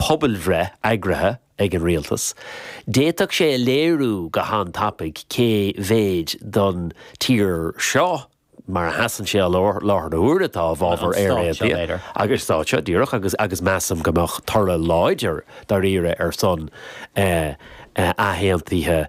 pobalbhreith eagraithe ag an rialtas, d'fhéadfadh sé a léiriú go han-tapaidh cé mhéid den tír seo, mar a sheasann sé i láthair na huaire, atá i bhfabhar Éire Aontaithe, sa stát seo, díreach, agus measaim go mbeadh toradh láidir dáiríre ar son athaontaithe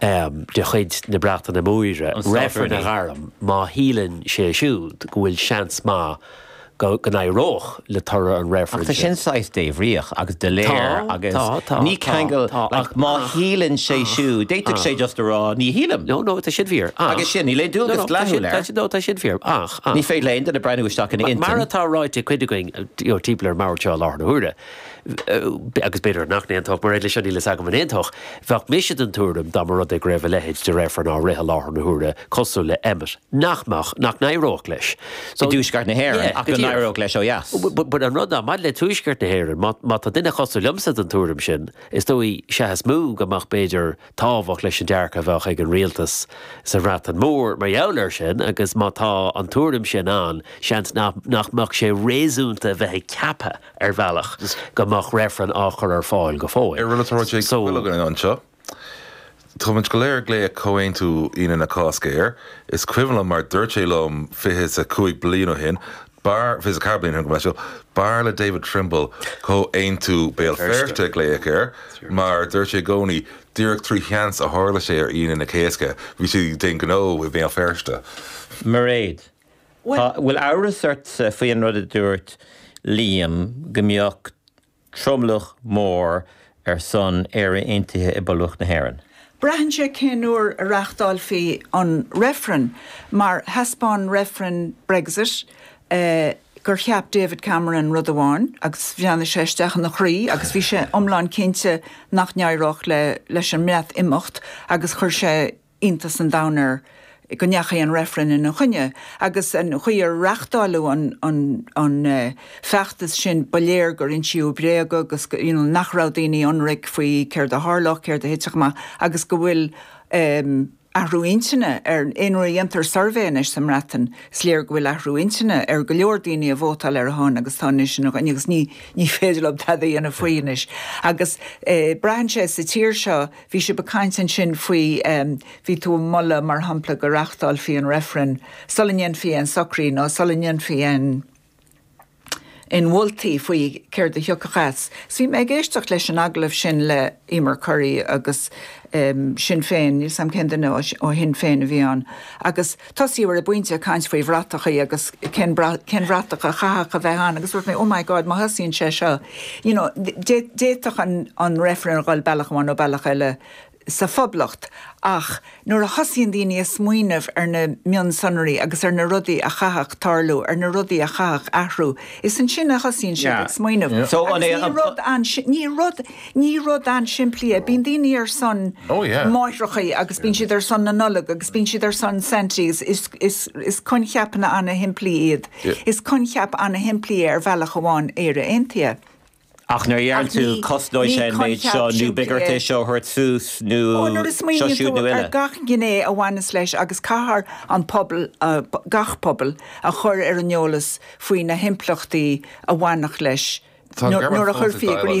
de chuid na Breataine Móire, reifreann a ghairm má shíleann sé siúd go bhfuil seans maith go n-éireodh le toradh an reifrinn sin. Ach tá sin saghas débhríoch agus doiléir agus ní ceangal ach má shíleann sé siúd, d'fhéadfadh sé just a rá ní shílim. No, no, tá sin fíor. Agus sin, níl aon dualgas dleathúil air. No, tá sin fíor. Ach, ach. Ní féidir le aon duine breathnú isteach ina intinn. Mar atá ráite ag cuid againn timpeall ar an mbord seo i láthair na huaire. agus b'fhéidir nach n-aontódh, Mairéad leis seo níl fhios agam an aontódh, bheadh mise den tuairim dá mba rud é go raibh a leithéid de reifreann á rith i láthair na huaire cosúil le Emmet nach mbeadh, nach n-éireodh leis i dTuaisceart na hÉireann ach go n-éireodh leis ó dheas. Bhuel an rud ná, maidir le Tuaisceart na hÉireann, má tá duine cosúil liomsa den tuairim sin, is dóigh seachas mó go mbeadh b'fhéidir tábhacht leis an dearcadh a bheadh ag an rialtas sa Bhreatain Mhór mar gheall air sin agus má tá an tuairim sin ann seans nach mbeadh sé réasúnta a bheith ag ceapadh ar bhealach is go mbeadh reifreann á chur ar fáil go fóill. Ar rinne Toraigh J. So. Quilligan anseo? Táimid go léir ag glaoch Comhaontú Aoine na Cásca air. Is cuimhin liom mar dúirt sé liom fiche is a cúig bliain ó shin, bhuel, fiche is a ceathair bliain ó shin go mb'fhearr le David Trimble Comhaontú Béal Feirste a ghlaoch air mar dúirt sé i gcónaí, díreach trí sheans a tharla sé ar Aoine na Cásca, bhí siad ag déanamh gnó i mBéal Feirste. Mairéad, Tá, an bhfuil amhras ortsa faoi an rud a dúirt Liam go mbeadh tromlach mór ar son Éire Aontaithe i bPoblacht na hÉireann. Braitheann sé cén uair a reachtáilfí an reifreann mar thaispeáin reifreann Brexit gur cheap David Cameron rud amháin agus bhreathnaigh sé isteach ina chroí agus bhí sé iomlán cinnte nach n-éireodh leis an mBreatimeacht agus chuir sé iontas an domhain air go ndeachaigh an reifreann ina choinne, agus an chaoi ar reachtáileadh an feachtas sin, ba léir gur insíodh bréaga agus you know nach raibh daoine ionraic faoi céard a tharlódh, céard a thitfeadh amach, agus go bhfuil athrú intinne ar, nuair a dhéantar suirbhé anois sa mBreatain, is léir go bhfuil athrú intinne ar go leor daoine a vótáil ar a shon agus atá anois ina choinne agus ní féidir leo tada a dhéanamh faoi anois. Agus braitheann sé sa tír seo, Bhí sibh ag caint ansin faoi, bhí tú ag moladh, mar shampla, go reáchtálfaí an reifreann sula ndéanfaí aon socruithe nó sula ndéanfaí aon mholtaí faoi céard a thiocfadh as. Is bhí mé ag éisteacht leis an agallamh sin le Emer Currie agus Sinn Féin, níl 'sam cén duine ó Shinn Féin a bhí ann, agus. Tosaíodh ar an bpointe ag caint faoi bhratachaí agus cén bhratach a chaithfeadh a bheith ann agus dúirt mé 'oh my God, má thosaíonn sé seo, you know, d'fhéadfadh an Reifreann a dhul bealach amháin nó bealach eile sa Phoblacht'. Ach nuair a thosaíonn daoine a smaoineamh ar na mionsonraí agus ar na rudaí a chaithfeadh tarlú, ar na rudaí a chaithfeadh athrú, is ansin a thosaíonn siad ag smaoineamh. Agus ní rud. Ní rud an-simplí é. Bíonn daoine ar son máithreacha agus bíonn siad ar son na Nollag agus bíonn siad ar son Santy agus is coincheapanna an-shimplí iad. Is coincheap an-shimplí é ar bhealach amháin Éire Aontaithe. Ach nuair a dheireann tú cosnóidh sé an méid seo nó b'fhéidir seo a thabhairt suas nó seo siúd nó eile. Nó nuair a smaoiníonn tú ar gach gné a bhaineas leis agus caithfear an pobal, gach pobal, a chur ar an eolas faoi na himpleachtaí a bhainfeadh leis nuair a chuirfí i gcrích